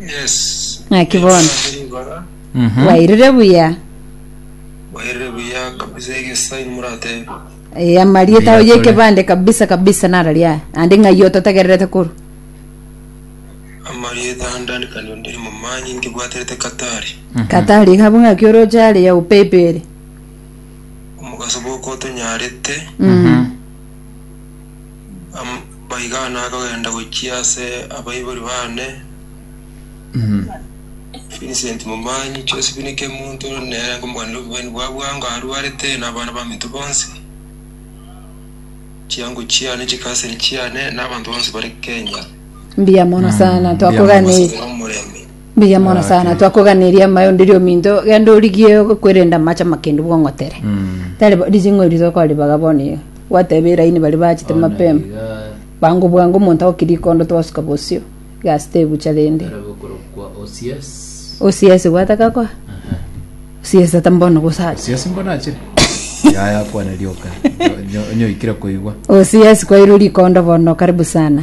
Yes. Ng'aki bono. Nabere igoro. Mhm. Wairire buya. Wairire buya kabisa egesaini muratebe. Eh, amarieta Buya oye kore. ekebande kabisa kabisa narari aya. Ande ng'ai ototegererete koru. Amarieta andani kandi ondiri momanyi nkibwaterete katari. Katari gabo ng'aki oroche are ya upepe ere. Omogaso bwoko otonyarete. Mhm. Amaiga nakogenda gochia ase abaibori bane, Vincent Momanyi, Josephine Kemunto, nere nkomoganera obong'aini bwa bwango arwarete, na abana baminto bonsi, chiango chiane, chikaseni chiane, na abanto bonsi bare Kenya. Mbuya mono sana, twakoganeirie. Omosabire omorembe. Mbuya mono sana twakoganeria amaye onde ri ominto genda origie okwerenda amache amakendu bwong'otere tari bo- rizing'o eri tokoribaga bono iga gwateba eraini bari bachete mapema bwango bwango omonto agoki rikondo twasuka bosio egasi tebucha rende osiesi gwataka koa osiesi tata mbono gosacha siasi mbona achire yaya kwana rioka Nyo- nyoikire koigwa osiesi kwairwe rikondo bono karibu sana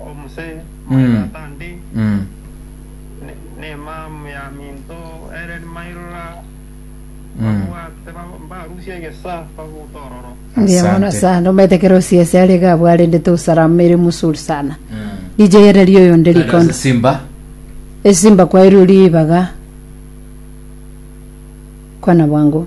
Omose, my Mm. tata ndi, Mm. ne- nemam ya minto ere nimairora Mm. babwate ba- mbarusia egesa babuta ororo. Ndiamona Asante. sana omete kerosi ase are gabwarendete usalama ere musuri sana Mm. DJ ere rio yonde Adoze rikondo Simba. esimba kwa eri uri ibaga kwana bwangu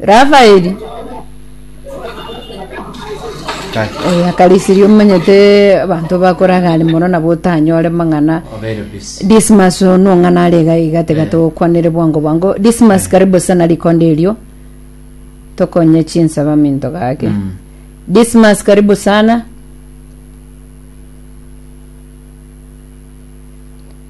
Rafaeli, oyo akarisirie omanyete abanto bakoraga are mono nabo otanyore mang'ana Dismas ono ng'ana are iga iga tiga togokwanere bwango bwango Dismas karibu sana rikonda erio tokonye chinsaba minto gake Dismas karibu sana